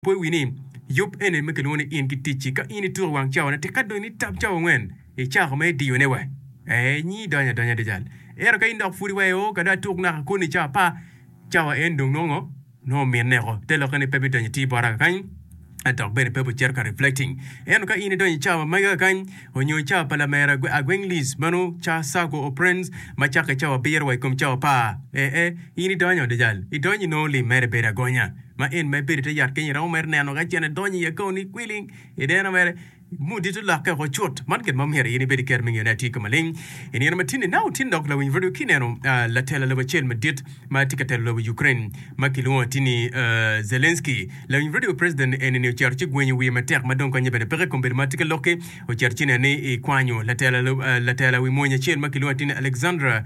Pwony wi ni, Yub ene ma kilwongo ni In ki Ticci. Ka in ituko wang cawone, tika dong nitab cawa angwen icako ma idiyone wa? Ee, nyi idonyo adonya adada. Ento ka in dok pwod iwayo, Oo, ka dong atuk naka koni cawa apar, cawa en dong nongo nongo ominne oko. Te lokke ni pe bidonyo i tii bota kakany, dok bene pe bicito ka reflecting. Ento ka in idonyo i cawa magi kakany, onyo i cawa pa lamera agwenglis, mano cawa circle or friends, ma cakke cawa abiro wa i kom cawa apar, ee, ee, in idonyo adada. Idonyo inongo lim mere bedo agonya. ma en ma ibedo i te yat kenyo iromo mere neno ka cen edonyo iye kong ni kwiling i nino mere mudi to lokke woko cut. Man gin ma omyero in ibed ki kero me ngeyo ni atye kama ling. I nino matini, inongo itino dok lawiny rwodwa ki neno latela lobo acel madit ma tye ka telo lobo Ukraine ma kilwongo ati ni Zelensky. Lawiny rwodwa president eni-ni ocito ci gwenyo wiye matek ma dong konye bene peke i kom bedo ma tye ka lokke. Ocito ci neno ni ekwanyo latela wi mony acel ma kilwongo ati ni Alexander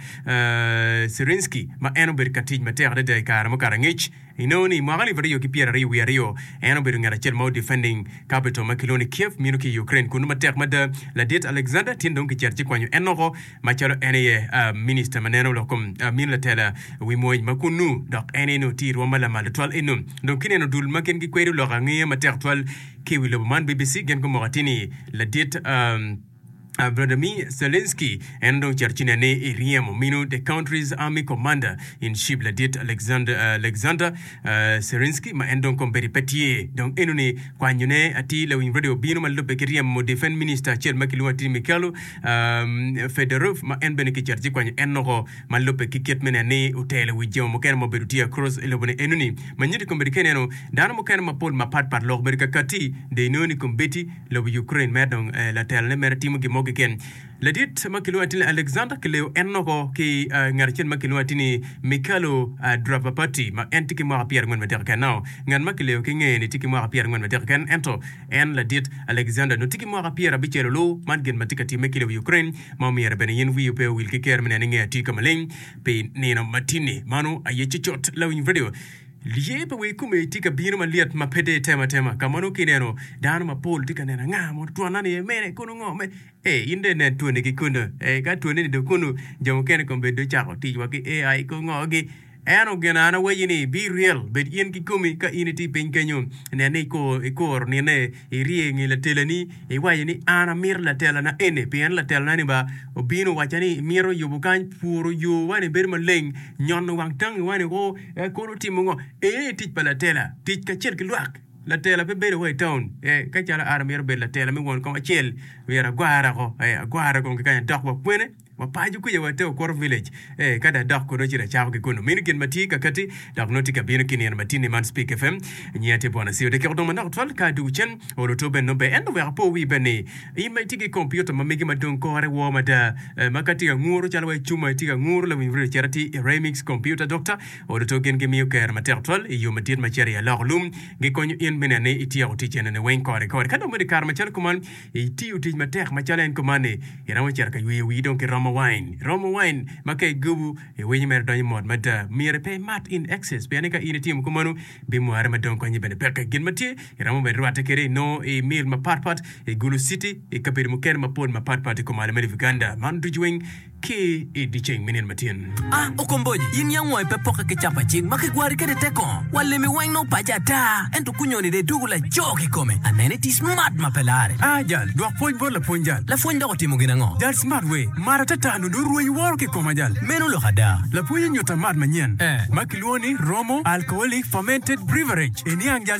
Syrsky ma en obedo ka tic matek adada i kare mukato angec. Inongo ni i mwaka alip aryo ki pyeraryo wiye aryo, en obedo ngat acel ma odefending capital ma kilwongo ni Kiev mito ki i Ukraine kunnu matek mada. Ladit Alexander tin dong kicito ci kwanyo en loko macalo en aye Minister ma neno lok kom mini latela wi mwony ma kunnu dok en aye nongo tye i rwom ma lamal tutwal eno. Dong kineno dul ma gin gikwedo lok angeya matek twal ki i wi lobo man, BBC gin gumoko atir ni ladit Vladimir Zelensky en dong cito ci nene i ryemo minu the country's army commander in chief ladit Alexander, uh, Alexander uh, Zelensky ma en dong kombedi pe tye dong eno ni kwanyo ne atir lawiny radio obino ma lubbe ki ryemo defense minister acel ma kilwongo atir Mikhailo um, Fedorov ma en bene kicito ci kwanyo en noko ma lubbe ki kit me nen ni otelo wi jo mukene ma obedo tye across i lobo ni eno ni ma nyuti kombedi ka ineno dano mukene mapol mapat pat lok bedo kakati de inongo ni kombedi Lobo Ukraine mere dong latelone mere timo gin mo keken. Ladit ma kilwongo atir ni Alexander kileyo en noko ki ngat acel ma kilwongo atir ni Mikhailo Dravapati ma en tye ki mwaka pyerangwen madek keken. Nao ngat ma kileyo ki ngeye ni tye ki mwaka pyerangwen madek keken ento en ladit Alexander nongo tye ki mwaka pyerabicel olu. Man gin ma tye ka timme ki lobo Ukraine ma omyero bene in wiyi pe owil ki ker me neno ni nge atir ka maleng pi nino matini. Mano aye cocot Lawinyb Radio. Lye pa wa ikome tye ka bino malyet ma pe te tem atema. Ka mono kineno dano mapol tye ka neno anga mo twonna ni emene kono ngo me e in dong inen twoni ki kunu. E ka twoni ni dong kunu jo mukene kong bed do cako tic wa ki AI ko ngo gi. Eno gin an awaci ni bi ryel bed in ki komi ka in itye piny kenyo nen ni ikoro nine Irye i nge latelani, iwaco ni, 'An amito latelana eni, pien latelana-ni ba obino owacca ni mito yubo kany, puro yowa-ni bedo maleng, nyono wang tangiwa niko, eka kono timo ngo? Eni aye tic pa latela, tic kacel ki lwak. Latela pe bedo wa i taun. Ka calo an amito bedo latela me won kom acel, myero agwarre woko, agwarre kong kikanya dok wa kwene? Wapaco kwica wa te Okuto Village. Ee, ka da dok kono ci da cako ki kunnu. Mini gin ma tye kakati, dok nongo tye ka bino ki nino matinni man Speke FM. Nyinga tye Bwanasiyo. Da kiko dong manok twal ka dwogo cen. Oo, lutwo bene nongo ber. Ento wek apo wii bene ni, in ma itye ki kompiuta ma megi ma dong kore woo mada, ee, ma ka tye ka nguru calo wa icuma itye ka nguru lawiny redio cit atir i Remix Computer Doctor, oo, lutwo gin gimiyo kero matek twal i yo madit ma cito i aloko lum. Gikonyo in me neno ni ityeko tic enoni weng kore kore. Ka dong bedo i kare macalo kuman, Itiyo tic matek macalo en kumanni, iromo cito ka yweyo wii dong ki romo wine. Romo wine ma ka igubu, iwinyo mere donyo mot mada. Myero pe imat in excess pien ni ka in itimo kumanu, bimware ma dong konyi bene peke. Gin ma tye, iromo bene rwatte kede inongo i meal mapat pat, i Gulu city, i kabedo mukene mapol mapat pat i kom alama ni Buganda. Man ducu weng. ki i dyeceng me nino ma tyen. A Okomboji, in yam wangi pe pokke ki capa cing ma kigwari kwede te kongo? Wa limi weng nongo pace ata, ento kunyoni dong ituku laco kikome. Anene iti Smart ma pe larre. A Jal, dwok pwony bot lapwony Jal. Lapwony dok otimo gin ango? Jal, Smart we, mar atata nongo dong rweny woro kikoma Jal. Meno lok ada. Lapwony onyuta mat manyen ma kilwongo ni Romo Alcoholic Fermented Beverage. Iniang Jal.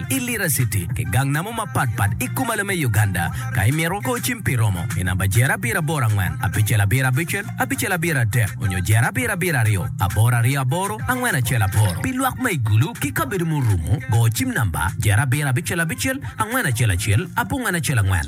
i Lira City ki gang namo mapat pat i Kumalo me Uganda. Ka imito, go cim pi romo i namba Jer Abiro Aboro Angwen Abicel Abiro Abicel Abicel Abiro Adek onyo Jer Abiro Abiro Aryo Aboro Aryo Aboro Angwen Acel Aboro. Pi lwak ma i Gulu ki kabedo ma orumo, go cim namba Jer Abiro Abicel Abicel Angwen Acel Acel Abongwen Acel Angwen.